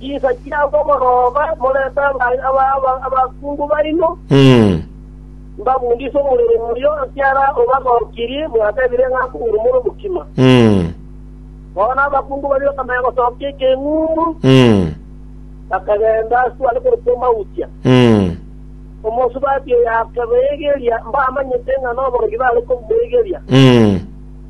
Chisa chiabo morobe morente ng'ai aba abakungu baino, mbabundise omorero omoyio, ekiagera obagokirie mwatebire ng'a akoguru more omokima. Bono abakungu baria bakamanya gosokia ekeng'umbu, bakagenda ase are korokwa Emautia. Omosubati oyo akabeegeria, mbamanyete ng'a noborogi bare komoegeria.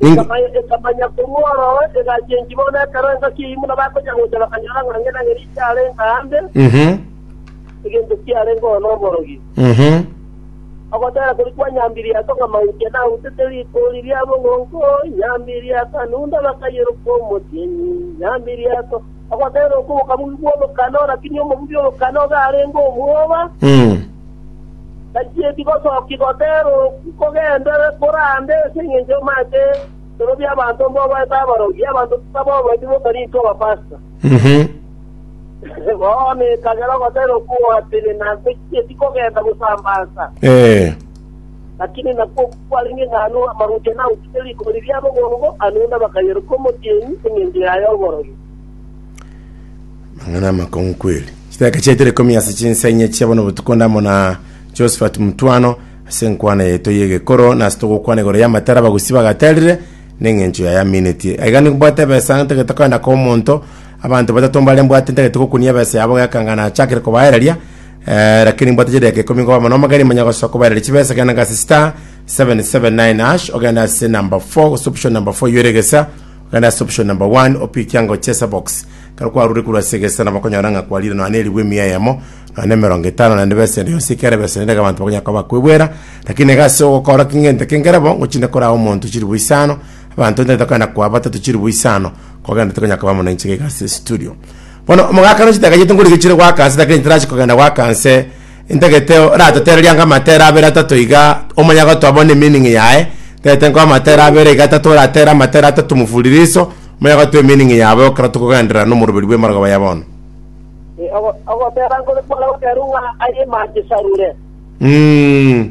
Ningo- Ekamanya- Ekamanya korwa ororo, egachia enchimi bono ekero engaki eyio buna bagocha gocha bakanyora ng'a ng'ina Elisha arenge aande, Mhm. egento kiarenge oo noborogi. Mhm. Ogotera kori kwa Nyambiriata ng'a mauche nautete rikoro riria bogongo, Nyambiriata nunda bakayeroka omotienyi, Nyambiriata. Ogoteera okwo gokabugia bw'omokano, rakini omobugia omokano iga arenge omwoba, tachieti gosokia goteera okwo kogenderere korande ase engencho y'omoate bikoro bi'abanto mbobaete abarogi, abanto tabaobaeti bokarintwa abapasta. Bono ekagera ogoteera okwo gogatire, na tachieti kogenda gosambansa. Lakini nakwo kware ning'aano amaroche nagochika rikori ria bogongo, amo nabakayerokia omotienyi engencho yaye oborogi. Amang'ana amakong'u kweri. Chidaka chiaito rikomi ase chinsa inye chia bono botuko onde amo na Josephat Mutwano ase enkwana yaito y'egekoro nase togokwana igoro y'amatara abagusi bagaterire neng'encho yaye aminetie aiga nimbwate ebesa ntagete koenda komonto abanto batato mbare mbwate ntagete gokunia ebesa yabo gekanga nachakire kobaereria Eh, lakini mbwate chideka ikomi nkoba mono magari manya gosoa kobaerera chibesa genda ngase star 779 hash ogenda ase number 4 gose option number 4 yoire gesa ogenda ase option number 1 opiki ango chesa box kero kwarure kurwa ase gesa na bakonyora nga kwarire nonya na eribu emia yamo nonya na emerongo etano naende besa ende yonsi ekere besa ende abantu bakonya koba kwebwera lakini egase ogokora kingente kengere bo ngochinde koraa omonto chiribu isano abantu ntete kogenda kwa batatu chiribu isano kogenda tokonya koba mono inche gigase studio Bono omogakano chitagachete ngori gechiire goaka nse lakini nchitarachi kogenda goaka nse, ntagete oratotererie anga amatere abere atato iga, omanye agotoa bono emeaning yaye, ntagete nkoe amatere abere iga atato oratere amatere atato mufuliliso, omanye agotoa emeaning yabo ekero tokogenderera nomoroberi bw'emorogoba ya bono. Eh, ogo- Ogotera nkore kware goteru ng'a aye mache sarure. Mm.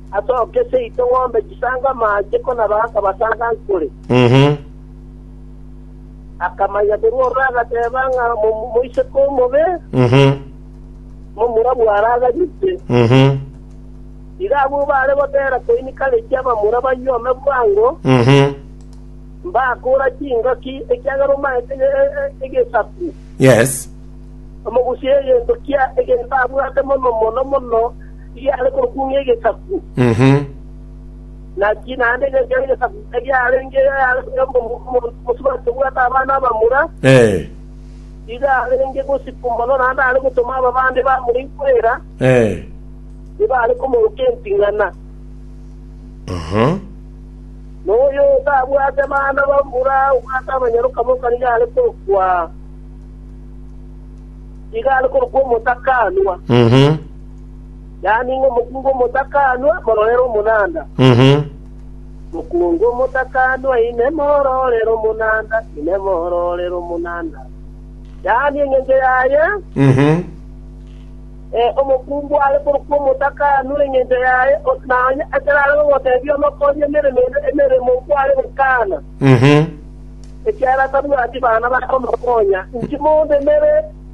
Asooke seito ng'ombe chisange amaache ko nabo akabasanga nkore. Akamanya korwa ororo agateeba ng'a mo- moiseke omobe, momura bwaraganyete. Igo abwo baare goteera koinika reki abamura baywe ome bwango, mbakoora chingaki, ekiagera omaete e- e- e- egesaku. Yes. Omogusie egento kia egento abwate mono mono mono, Riare korokwo ng'egesaku, naki naende engencho y'egesaku eriarenge omonto omosubati obwate abana abamura, nigo arenge gosibwa mono, naende are gotoma ababande bamura ikwera, nigo are komoroka enting'ana. Na oyo otabwate bana bamura, obwate abanyaroka boka, nigo are korokwa omotakaanwa. yaani ng'a omokungu omotakanwa mororere omonanda. Mhm. Mokungu omotakanwa inemo ororere omonanda, inemo ororere omonanda, yaani engencho yaye Mhm. eh, omokungu are korokwa omotakanwa engencho yaye, o- na onye ekero are gogotebia omokorie emeremo ende emeremo nkware gokana, Mhm. ekiagera tabwati bana bakomokonya, inki mondo emere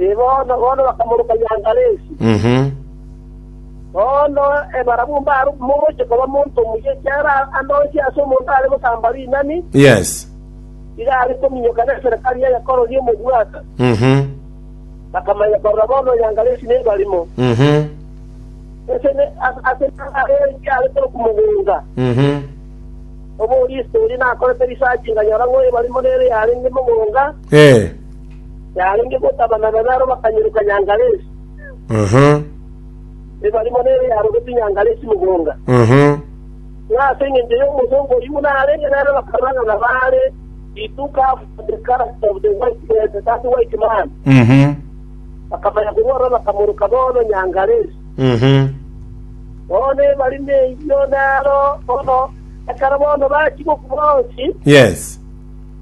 Ee, bono, bono bakamoroka Yangalesi. Bono ebarabwo mbare mogochia koba monto omuya ekiagera ande onsi ase omonto are gosamba rinani Yes. iga are kominyoka neserekari eye korora omobwata. Bakamanya korora bono Yangalesi nebarimo, ase ne- as- ase nare ekiare korokwa mogonga. Oborista oria nakorete research nganyora ng'o ebarimo nere yarenge mogonga, Ee. yarenge gotabanana naro bakanyeroka Nyangalesi, Aha. ne barimo nere yarogeti Nyangalesi mogonga. Aha. Ng'a ase engencho y'omosomba oyio buna arenge nere bakarwana na baare He took up the character of the white man, that white man. Mhm. Bakamanya korwa ororo bakamoroka bono Nyangalesi. Mhm. Bono ebari neyio naro bono, ekero bono bachia gokwa bonsi, Yes.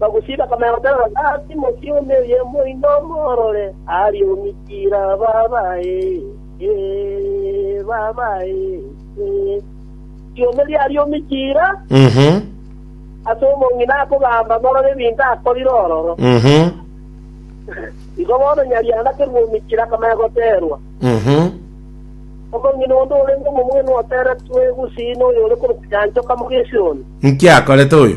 Bagosiba komenya gotenena na Timoti omoyemo oino omworore, aria omikire ababae. Timothio aria omikire ase omong'ina akogamba morore ebinto akorire ororo. Igo bono nyarianda kerua omikire akomenya goterwa. Omong'ina onde orenge omomwene oteretwe gusii noyore korokwa Yanchoka mogesiri one. Inki akorete oyo?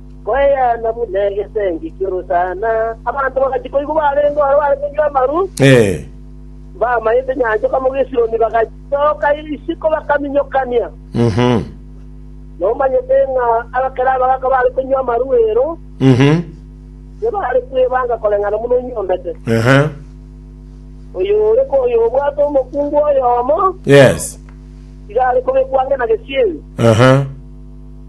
Koeana buna egesengi ki'orosana, abanto bagachia koigwa barenge oro bare konywa amaru, bamaete nyancha kobamo gesironi, bagasoka isiko bakaminyokania. Nomanyete ng'a abakera abagaaka bare konywa amaru ero, tibare kwebanga koreng'ana buna onyombete. Oyore koyobwate omokungu oyomo, tiga are kobekwa ang'e na gesieri.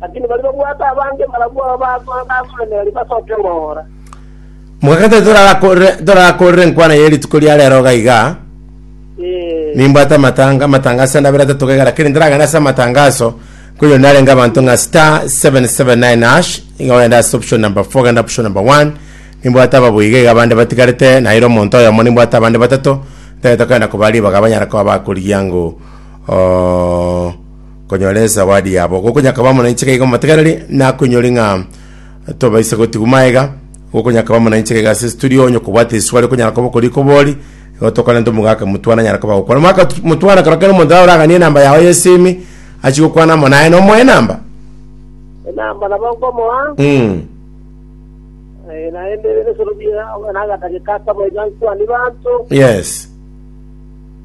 Lakini baria babwate abange barabwo aba bago bakoremereria basoke engora. Mogakataa torakorere torakorere enkwana ye rituko ria rero iga iga, Ee, nimbwate amatanga amatanga ase ndabere atato gaiga lakini ntaragenda ase amatangaso koyo narenge abanto ng'a star 779 hash iga ogenda ase option number 4 genda option number 1 nimbwate ababo iga iga abande batigarete naira omonto oyomo nimbwate abande batato ntagete kogenda kobaa ribaga abanyara koba bakorigia ng'o oo Konyora esawadi yabo gokonyakabamo na inchega iga motegererie, nakonyori ng'a tobaisa gotigu maega gokonyakabamo na inchega iga ase situri onye kobwate eswari okonyara koba okori kobori igo tokore nto omogaka motwana anyara koba gokwana omogaka tu- motwana kero kero omonto oraganie enamba yao yesimi achie gokwana amo naye nomoe enamba enamba nabo nkomoa mm. eh, naende ebisorobia nagatageka akaba iga nkwanie banto yes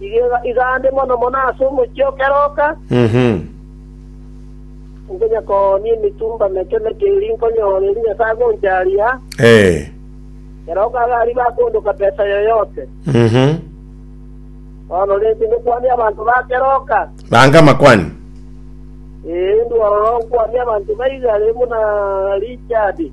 Igega igande mono mono ase omochie o keroka, nkonya koonia emitumba meke-meke eria nkonyora eria Nyasae agoncharia, keroka iga aria bakoondoka besa yoyote. Bono rente ngokwania abanto ba keroka, Bange amakwani. ee, inwe ororo nkwania abanto ba igare buna Richard.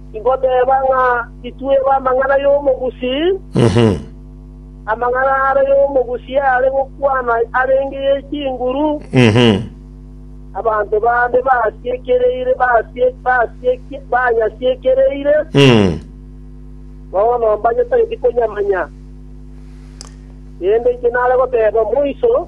Ingoteba ng'a titwe b'amang'ana y'omogusii. Amang'ana are y'omogusii are gokwana arenge ye chinguru, abanto bande basiekereire banyasiekereire, bono mbanyetageti konyamanya. Erinde inche nare goteba moiso.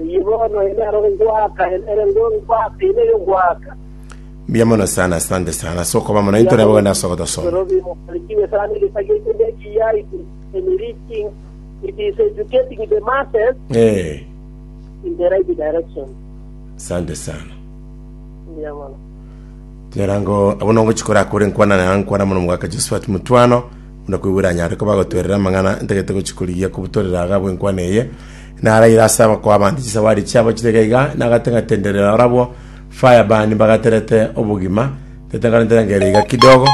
Eyio bono ere naro ngoaka, ere ere ngo- ngoaka, ere ere ngoaka. Mbuya mono sana, asante sana ase okoba mono intore abo gende ase ogotosoma. Nairobi mobarikiwe sana egesagia ekio nekiya it is enriching it is educating the masses Eh, in the right direction asante sana. mbuya mono Nyarango abo nongo chikora akore nkwana na nkwana mono mugaka Josephat Mutwano muna kwigura nyare ko bagotwerera amang'ana ntagete gochikorigia kubutorera agabo enkwana eye Naraire ase abakoo abande chisawari chiabo chirege iga, nagateng'atenderere barabwo, fire burn, mbagaterete obogima, ntetenganete enga ere iga kidogo.